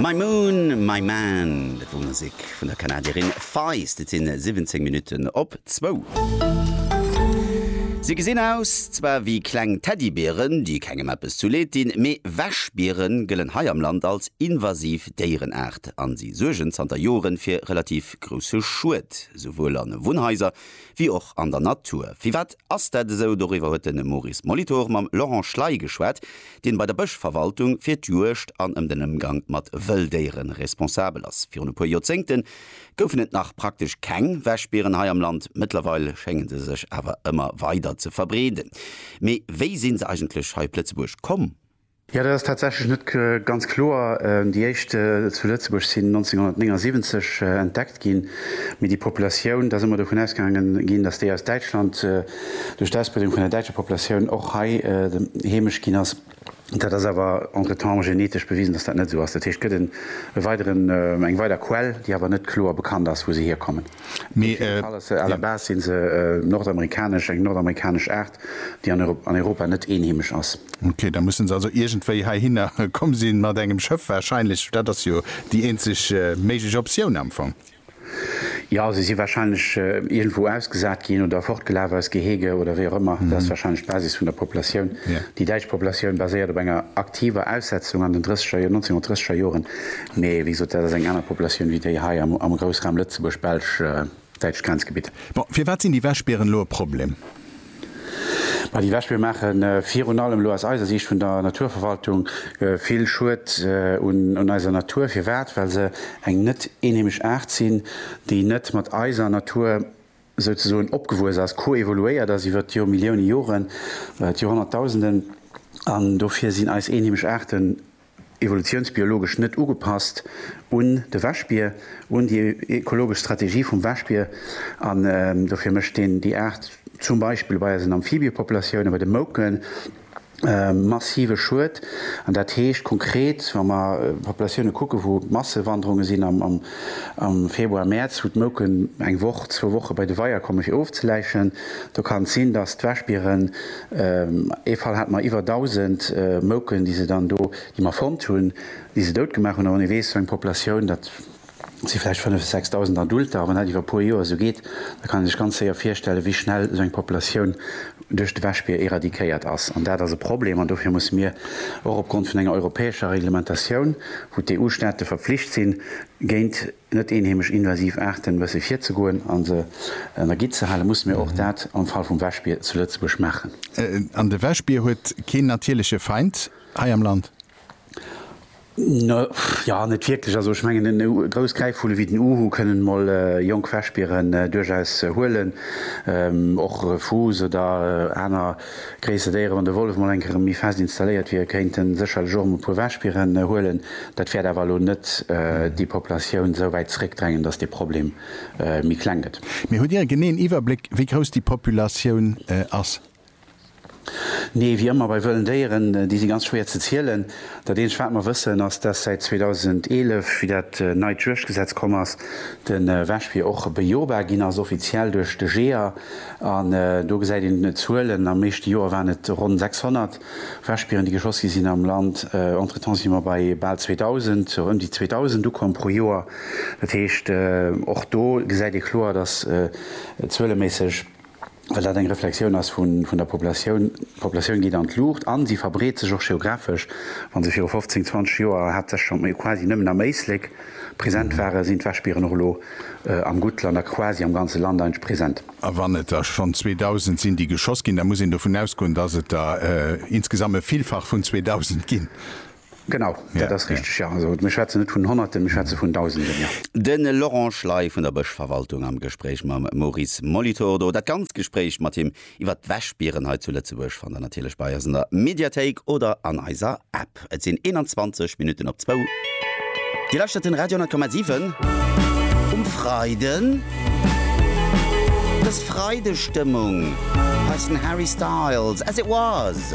My Moon, My Man, dat wor Musek vun der Kanadierin Feist. Et sinn 17 Minutten op zwou. Si gesinn aus zwar wéi kleng Teddybieren, déi kengem eppes zu Leed dinn, mee Wäschbiere gëllen hei am Land als invasiv Déierenaart a si suergen zanter Joren fir relativ grousse Schued, souwuel a Wunnhaiser wéi och an der Natur. Firwat ass dat esou? Doriwwer huet de Maurice Molitor mam Laurent Schley geschwat, deen bei der Bëschverwaltung fir d'Juegd an ëm den Ëmgang mat Wëlldéiere responsabel ass. Virun e puer Joerzéngte goufen et nach praktesch keng Wäschbieren hei am Land. Mëttlerweil schénge se sech awer ëmmer weider ze verbreeden. Mee wéi si se eigentlech hei op Lëtzebuerg komm? Jo, dat ass tatsächlech net ganz kloer. Déi éischt zu Lëtzebuerg sinn 1979 entdeckt ginn, mee déi Populatioun, da si mer dovun ausgaange ginn, datt déi aus Däitschland duerch d'Ausbreedung vun der däitscher Populatioun och hei heemesch ginn ass. Dat ass awer entretemps genetesch bewisen, datt dat net esou ass. Dat heescht, et gëtt e weideren, eng weider Quell, déi awer net kloer bekannt ass, wou se hierkommen. Mee. À la base sinn se nordamerikanesch, eng nordamerikanesch Aart, déi an Europa net eenheemesch ass. Ok, da mussen se also iergendwéi heihinner komm sinn, mat engem Schëff wahrscheinlech. Dat ass jo déi eenzeg méiglech Optioun am Fong. Jo, se si wahrscheinlech iergendwou ausgesat ginn oder fortgelaf aus Gehege oder wéi och ëmmer. Dat ass wahrscheinlech d'Basis vun der Populatioun. Déi däitsch Populatioun baséiert op enger aktiver Aussetzung an den 1930er Joren, Mee wéi gesot, dat ass eng aner Populatioun wéi déi hei am Groussraum Lëtzebuerg, Belsch, däitscht Grenzgebitt. Bon, firwat sinn déi Wäschbieren elo e Problem? Ma déi Wäschbier maache virun allem elo aus eiser Siicht vun der Naturverwaltung vill Schued un eiser Natur. Firwat? Well se eng net eenheemesch Aart sinn, déi net mat eiser Natur souzesoen opgewuess ass, koevoluéiert ass iwwer d'Jormillioune Joren, d'Jorhonnertdausenden. An dofir sinn eis eenheemesch Aarten evolutiounsbiologesch net ugepasst un de Wäschbier, un déi ekologesch Strategie vum Wäschbier, an dofir mécht een déi Aart zum Beispill bei eisen Amphibiëpopulatiounen, bei de Mouken, massive Schued. An dat heescht konkret, wa mer Populatiounen kucken, wou Massewanderunge sinn am Februar, Mäerz, wou d'Mouken eng Woch, zwou Woche bei de Weier kommen, fir ofzeläichen, do kann et sinn, datt d'Wäschbieren Ee Fall hate mer iwwer 1.000 Mouken, déi se dann do, déi mer fonnt hunn, déi se dout gemaach hunn. A wann ee weess, sou eng Populatioun, dat si vläicht 5 bis 6.000 Adulter, a wann dat iwwer e puer Joer esou geet, da kann een sech ganz séier virstellen, wéi schnell esou eng Populatioun duerch de Wäschbier eradikéiert ass. An dat ass e Problem. An dofir musse mir och opgrond vun enger europäescher Reglementatioun, wou d'EU-Staate verpflicht sinn, géint. net eenheemesch invasiv Aarten wësse virzegoen a se an der Gitt ze halen, musse mir och dat am Fall vum Wäschbier zu Lëtzebuerg maachen. An de Wäschbier huet keen natierleche Feind hei am Land? Jo, net wierklech. Also ech mengen, e grouss Gräifvulle wéi den Uhu kënnen mol jonk Wäschbieren duerchaus huelen, och Fuuss oder aner. Gréisser Déiere, wann de Wollef mol eng Kéier erëm méi fest installéiert wier, kéint e sécherlech och erëm e puer Wäschbieren huelen. Dat wäert awer elo net déi Populatioun esou wäit zeréckdrängen, datt dee Problem méi kleng gëtt. Mee hutt Dir e geneeën Iwwerbléck, wéi grouss déi Populatioun ass? Nee, wéi ëmmer bei wëllen Déieren, déi si ganz schwéier ze zielen. Dat eenzegt, wat mer wëssen, ass, datt säit 2011, wéi dat neit Juegdgesetz komm ass, de Wäschbier och bejobar ginn ass, offiziell duerch de Jeeër. An do gesäit een d'Zuelen, am meeschte Joer waren et ronn 600 Wäschbieren, déi geschoss gi sinn am Land. Entretemps si mer bei bal 2.000, ëm déi 2.000 ukomm pro Joer. Dat heescht, och do gesäit ee kloer, datt zueleméisseg, well dat eng Reflexioun ass vun der Populatioun, d'Populatioun geet an d'Luucht a se verbreet sech och geographesch. Wa se viru 15, 20 Joer haaptsächlech, quasi nëmmen am Éislek, Present ware sinn d'Wäschbieren och elo am Guttland a quasi am ganze Land eintsch present. A wann et der schonn 2.000 sinn, déi geschoss ginn, da muss een dovun ausgoen, dass et der insgesamt e Villfach vun 2.000 ginn. Genau, dat ass richteg, jo. Also mir schwätzen net vun Honnerten, mir schwätze vun Dausenden, jo. De Laurent Schley vun der Bëschverwaltung am Gespréich mam Maurice Molitor. Do dat ganzt Gespréich mat him Iwwer d'Wäschbieren hei zu Lëtzebuerg fannt der natierlech bei eis an der Mediathéik oder an eiser App. Et sinn 21 Minutten op zwou. Dir lauschtert den Radio 10,7 um Freiden. Dës Freidestëmmung heissen Harry Styles, As It Was.